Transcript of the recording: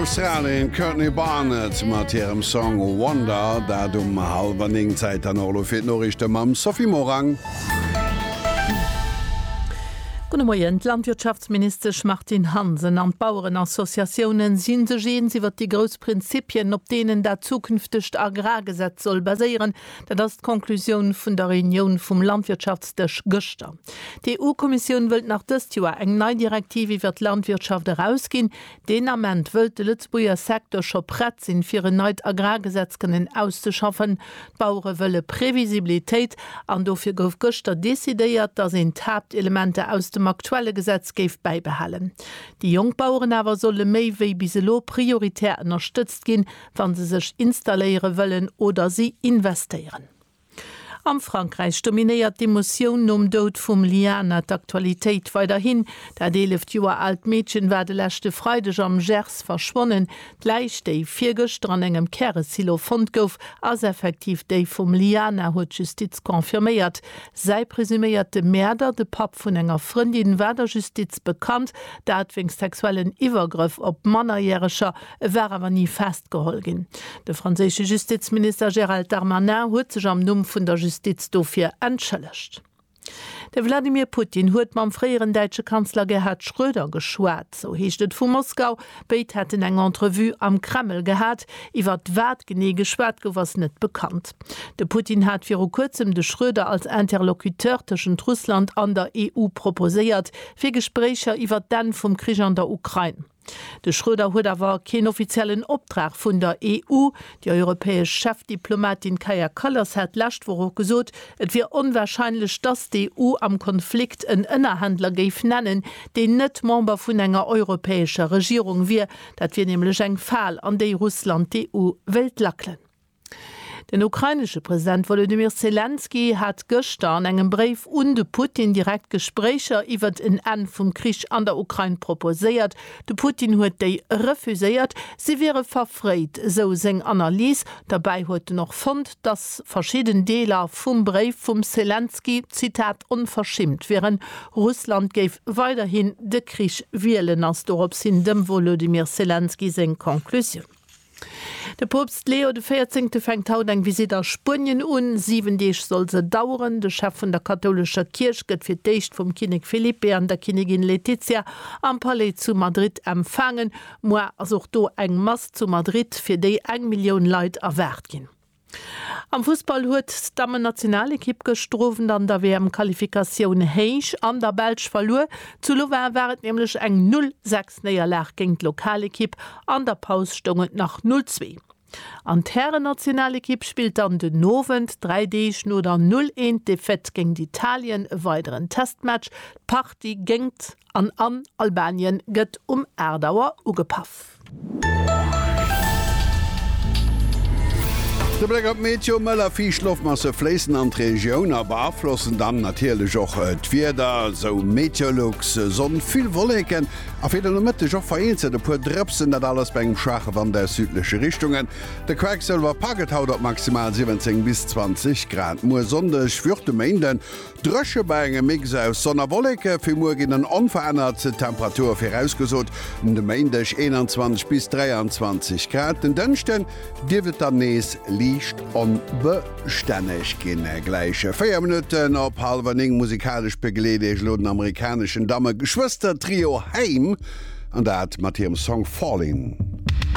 Australien, Courtney Barnett mat hirem Song Wonder, dat um halwer 9 Zäit an och elo fir d'Noriichte mam Sophie Morang. Gudde Moien. D'Landwirtschaftsministesch Martine Hansen an d'Bauerenassociatioune si sech eens iwwer déi grouss Prinzippien, op deenen dat zukünftegt Agrargesetz soll baséieren. Dat ass d'Conclusioun vun der Reunioun vum Landwirtschaftsdësch gëschter. D'EU-Kommissioun wëllt nach dëst Joer eng nei Direktiv iwwer d'Landwirtschaft erausginn. Deen Ament wëllt de Lëtzebuerger Secteur scho prett sinn, fir en neit Agrargesetz kënnen auszeschaffen. D'Bauere wëlle Previsibilitéit an dofir gouf gëschter decidéiert, datt een d'Haaptelementer aus dem aktuelle Gesetz géif bäibehalen. Déi jonk Baueren awer solle méi wéi bis elo prioritär ënnerstëtzt ginn, wa se sech installéiere wëllen oder si investéieren. Am Frankräich dominéiert d'Emotioun nom Doud vum Liana d'Aktualitéit weiderhin. Dat 11 Joer aalt Meedchen war de leschte Freideg am Gers verschwonnen. D'Läich, déi virgëschter an engem Käresilo fonnt gouf, ass effektiv déi vum Liana, huet d'Justiz confirméiert. Säi presuméierte Mäerder, de Papp vun enger Frëndin, war der Justiz bekannt, dat wéinst sexuellen Iwwergrëff op Mannerjäreger. E war awer ni festgeholl ginn. De franséische Justizminister Gérald Darmanin huet sech am Numm vun der Justiz dofir entschëllegt. De Wladimir Putin huet mam fréieren däitsche Kanzler Gerhard Schröder geschwat. Sou heescht et vu Moskau. Béid hätten eng Entrevue am Kreml gehat. Iwwer wat genee geschwat gouf, ass net bekannt. De Putin hat viru kuerzem de Schröder als Interlocuteur tëschent Russland an der EU proposéiert, fir Gespréicher iwwer d'Enn vum Krich an der Ukrain. De Schröder huet awer keen offiziellen Optrag vun der EU. Déi europäesch Chefdiplomatin Kaja Kallas hat d'lescht Woch och gesot, et wier onwarscheinlech, datt d'EU am Konflikt en Ënnerhändler géif nennen, deen net Member vun enger europäescher Regierung wier. Dat wier nämlech eng Fal, an déi Russland d'EU wéilt lackelen. Den ukrainesche President Wolodymyr Selenskyj hat gëschter an engem Bréif un de Putin direkt Gespréicher iwwert en Enn vum Krich an der Ukrain proposéiert. De Putin huet déi refuséiert, si wiere verfréit, esou seng Analys. Derbäi huet en och fonnt, datt verschidden Deeler vum Bréif vum Selenskyj, Zitat, onverschimmt wieren. Russland géif weiderhin de Krich wielen, ass dorops hin dem Wolodymyr Selenskyj seng Conclusioun. De Poopst Leo de Véierzéngte fänkt haut eng Visitt a Spuenien un. Siwen Deeg soll se daueren. De Chef vun der kathoulescher Kierch gëtt fir d'éischt vum Kinnek Felipe an der Kinnigin Letizia am Palais zu Madrid empfaangen. Muar ass och do eng Mass zu Madrid, fir déi eng Millioun Leit erwaart ginn. Am Fussball huet d'Dammennationalekipp gëschter Owend an der WM-Qualifikatioun héich an der Belsch verluer. Zu Louvain war et nämlech eng Null sechs Néierlag géint d'Lokalekipp. An der Paus stoung et nach Null zwee. An d'Härennationalekipp spillt dann den Owend, dräi Deeg no der Null een Defaite géint Italien, e weideren Testmatch. D'Partie géngt an an Albanien gëtt um 8 Auer ugepaff. De Bléck op d'Meteo, Mëll a fiicht Loftmasse fléissen an d'Regioun a beaflossen dann natierlech och d'Wieder, sou Meteolux. Sonn, vill Wolleken a fir de Nomëtteg och vereenzelt e puer Drëpsen, dat alles bei engem schwaache Wand aus südleche Richtungen. De Quacksëlwer packt et haut op maximal 17 bis 20 Grad. Muer Sonndeg, wéi och de Méinden, Dréche bei engem Mix aus Sonn a Wolleke, fir muer ginn en onverännert Temperature virausgesot, um de Méindeg 21 bis 23 Grad, den Dënschden dierft et dann nees liicht onbestänneg ginn. Gläiche 4 Minutten op hallwer 9 musikalesch begleet Iech elo den amerikaneschen Damme-Geschwëster-Trio Haim, an dat mat hirem Song Fallin'.